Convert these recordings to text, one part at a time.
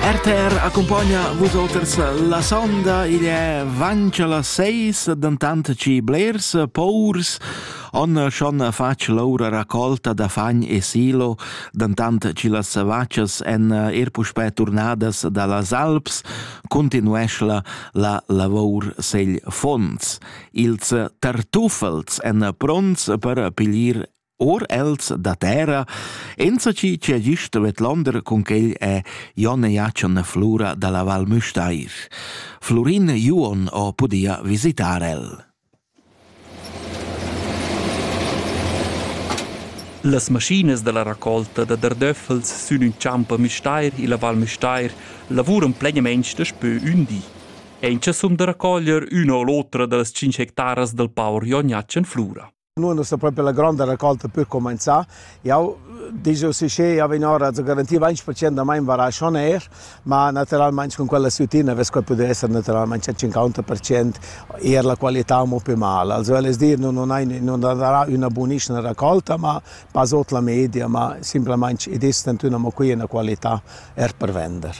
RTR accompagna vus olters la sonda, igl è vancia las seis, dentant ci blers paurs on schon fac l'aura raccolta da fagn e silo, dentant ci las vaccias en er puspè turnadas da las Alps, continuescla la lavour segl fonds. Ils tartuffels en pronts per pilir Or els da terra, enzatgi che ha gist vedlander cun quel è Jon Jatschen Flura dalla Val Müstair. Florin Juon ho pudia visitar el. Las maschinas dalla raccolta da dardöffels sün ün champ a Müstair illa Val Müstair lavuran plegnament daspö ün di. Eincha sun da raccoglier üna o l'otra da las 5 hectaras dal paur Jon Jatschen Flura. Nu es sta propi la gronda racolta per cumanzà. Jau dizu si che jau vegn ora a garantir 20% da main varasc on aer, ma natüralmaing cun quella sütina vess quai pudü esser natüralmaing a 50% eir la qualità amo pü mal. Also völ es dir, nun hai nun darà üna bunischna racolta, ma pas ot la media, ma simplamaing id es tantüna amo qui üna qualità eir per vender.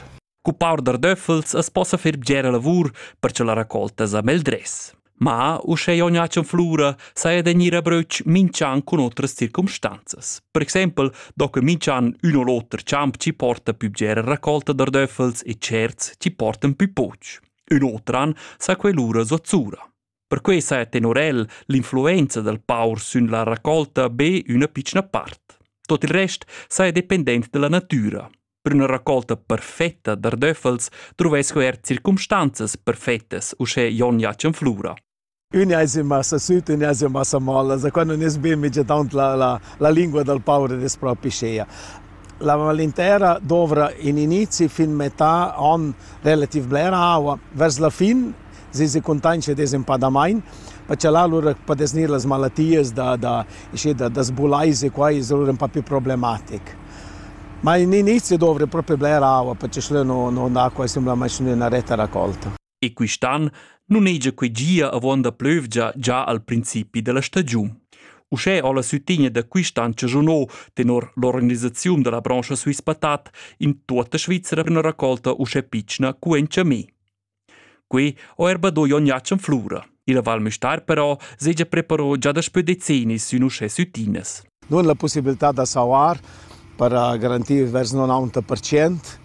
Cu paur da döffels as possa fer bgera lavur per cha la raccolta sa meldress. Ma, uschè jon Jacen Flura saja da gnir a bröch minch'an cun otras circumstanzas. Per exaimpel do que minch'an ün o l'oter champ chi porta pü bgera raccolta da döffels e tscherts chi portan pü poch. Ün otran sa que lura zuzzura. Perquei sa è tenor el l'influenza dal paur sün la raccolta be üna pitschna part. Tot il rest saja dependent della natura. Per una raccolta perfetta d'ardöffels truvesco er circumstanzas perfettas, uschè Jon Jacen Flura. Ün ais in massa süt, ün ais in massa mol, also quando ne bien migiadant la, la, la lingua del paur es propi scea. La malintera dovra in inizi fin metà an relativ blera aua, vers la fin se se contanscha desenpadamain, perché là lur podes gnir las malatias da da da da sbulais e quai es lur ün po più problematic. Ma in inizio dovri propi bler aua perché schlö no no acua simplamaing üna retta raccolta. E quist'an nun hegia que gia avon da plövgia già al principi della stagiun. Uschè ho la sütigna da quist'an chagiunò tenor l'organisaziun della brancha Swiss Patat in tuotta Svizzera üna raccolta uschè pitschna cu en Chamé. Quei ho er badui ogni acc en flura. Il Val Müstair però segia preparò già daspö decennis sün uschè süttinas. Nun la possibilità da sauar per garantir vers 90%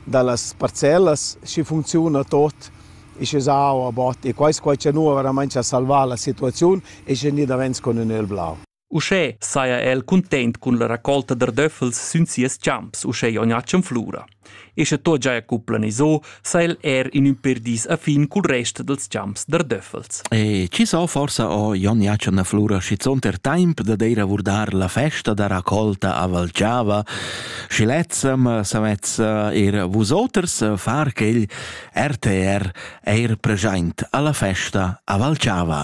da las parcellas schi funcziuna tot e sche sau a bot e quai quai cha nu veramente a salvà la situaziun e sche ni davents con ün el blau. Uschè saja el cuntent cun la racolta d'ardöffels sün sias champs uschè Jognatschen Flura. E sche tot giaja cu planiso, sa el er in ün per dis a fin cul rest dels champs d'ardöffels. E ci so forsa o Jognatschen Flura schizontер temp da deir a vurdar la festa da racolta a Valciava, schi lezzem savez er vusoters far quel RTR eir preschaint alla festa a Valciava.